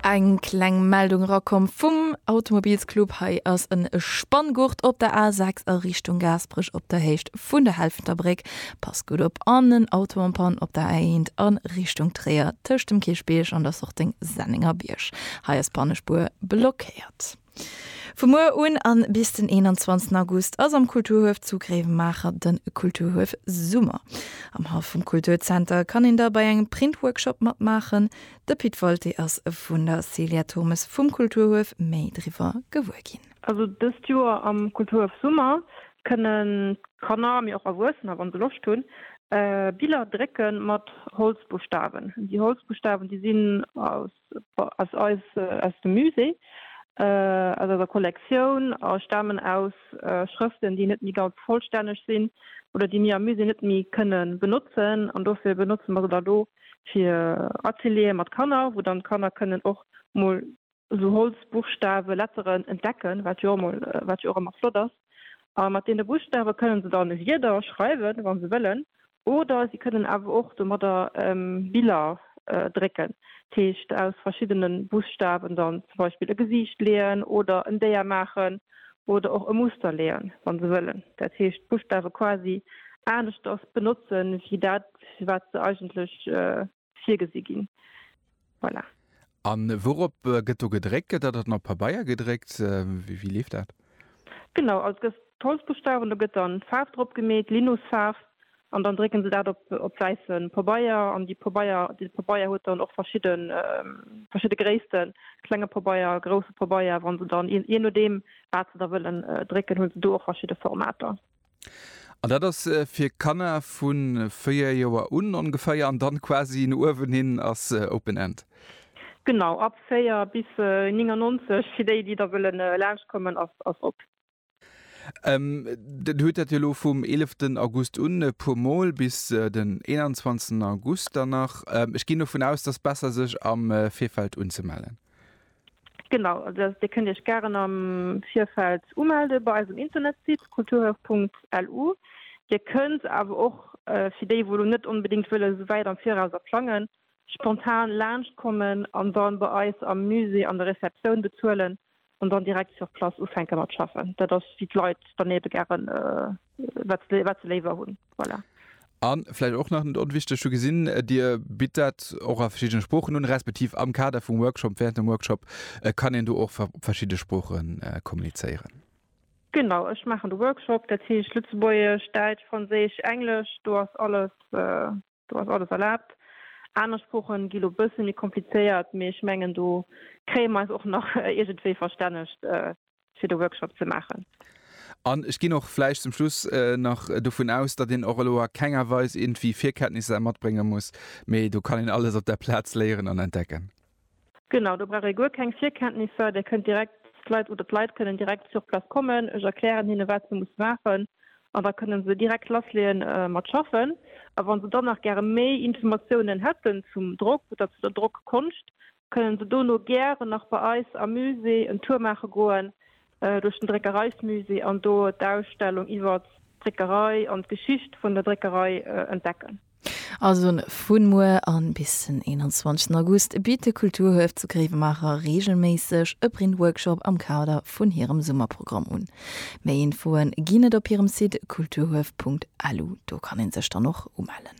Eng kleng Meldung erakomm vum Automobilsclub. Hei ass en Spanngurt op der A6 a Richtung Gaasperech op der Héicht vun der Helfenter Bréck. Passt gutt op! An en Auto en Panne op der A1 a Richtung Tréier tëscht dem Kierchbierg an der Sorting Sennengerbierg. Hei ass d'Pannespuer blockéiert. Vu muer un an bis den 21 August ass am Kulturhuef zu Gréiwemaacher den Kulturhuef Summer. Am Haff vum Kulturzenter kann een da bei engem Printworkshop matmaachen. De Pit Wolté ass vun der Célia Thurmes vum Kulturhuef méi driwwer gewuer ginn. Also dëst Joer am Kulturhuef Summer kënnen d'Kanner, mee och Erwuessener wann se Loscht hunn, Biller drécken mat Holzbuschtawen. Déi Holzbuschtawen déi sinn aus ass eis aus dem Musée, aus eiser Kollektioun a stamen aus Schrëften, déi net méi ganz vollstänneg sinn oder déi mir am Musée net méi kënne benotzen. An dofir benotze mer se dann elo fir Ateliere mat Kanner, wou dann d'Kanner kënnen och mol esou Holzbuchstawen, Letteren entdecken, wat jo emol, wat jo och ëmmer flott ass. A mat deene Buchstawe kënne se dann Wierder schreiwen, wa se wëllen, oder si kënnen awer och domadder Biller drécken, dat heescht aus verschiddene Buschtaawen dann zum Beispill e Gesiicht leeën oder en Déier maachen oder och e Muster leeën, wa se wëllen. Dat heescht d'Buschtaawe quasi aneschters benotzen, wéi dat, fir wat se eigentlech. virgesi ginn. Voilà. An wourop gëtt do gedréckt? Gëtt dat dann op Pabeier gedréckt? Wéi, wéi leeft dat? Genau, also gëss d'Holzbuschtawen, do gëtt dann d'Faarf drop gemeet, Linusfaarf, an dann drécken se dat op, op wäisse Pabeier. An déi Pabeier, dee Pabeier huet dann och verschidde, verschidde Gréissten, klenge Pabeier, grousse Pabeier. Wann se dann, jee nodeem wat se da wëllen drécken, hu se do och verschidde Formater. An dat ass äh, fir Kanner vun véier Joer un ongeféier an dann quasi no uewen hin ass äh, Open End. Genau, ab 4 bis äh, 99 fir déi déi da wëllen äh, laanscht kommen ass ass op. Ähm, den huet dat jo lo vum 11 den August un e puer mol bis äh, den 21 August dann nach. Ähm, ech ginn dovun aus, dass besser sech am äh, Virfeld unzemellen. Genau, Dir kënnt Iech gären am Virfeld umelde bei eisem Internetsite kulturhaus.lu. Dir kënnt awer och, fir déi wou lo net onbedéngt wëlle sou wäit am Viraus a plangen, spontan laanscht kommen an dann bei eis am Musée an der Receptioun bezuelen an dann direkt sur place ufänke mat schaffen. Dat ass wéi d'Leit dann ebe gären. wat se, wat se léiwer hunn. Voilà. An vläicht och nach net onwichteg, hu gesinn, äh, Dir bitt dat och a verschiddene Sproochen un, respektiv am Kader vum Workshop, während dem Workshop äh, kann een do och op verschiddene Sproochen äh, kommunizéieren. Genau, ech maachen de Workshop, dat heescht Lëtzebuergesch, Däitsch, Franséisch, Englesch, do ass alles äh, Do ass alles erlaabt. Aner Sproochen gi lo bësse méi komplizéiert, mee ech mengen do kréie mer eis och nach iergendwéi verstännegt fir de Workshop ze maachen. An ech ginn och vläicht zum Schluss nach dovun aus, datt een och elo a kenger Weis iergendwéi Virkenntnisser matbrénge muss, mee do kann een alles op der Plaz léieren an entdecken. Genau, do brauch ee guer keng Virkenntnisser, Dir kënnt direkt d'Leit oder d'Leit kënnen direkt sur place kommen, ech erklären hinnen, wat se musse maachen an da kënne se direkt lassleeën mat schaffen. A wa se dann nach gäre méi Informatiounen hätten zum Drock oder zu der Drockkonscht, kënne se dono gären nach bei eis am Musée en Tour maache goen, Duerch den Dréckereismusée an do d'Ausstellung iwwert d'Dréckerei an d'Geschicht vun der Dréckerei entdecken. Also vun muer an bis den 21 August bitt de Kulturhuef zu Gréiwemaacher reegelméisseg e Printworkshop am Kader vun hirem Summerprogramm un. Méi Infoen ginn et op hirem Site kulturhuef.lu. Do kann een sech dann och umellen.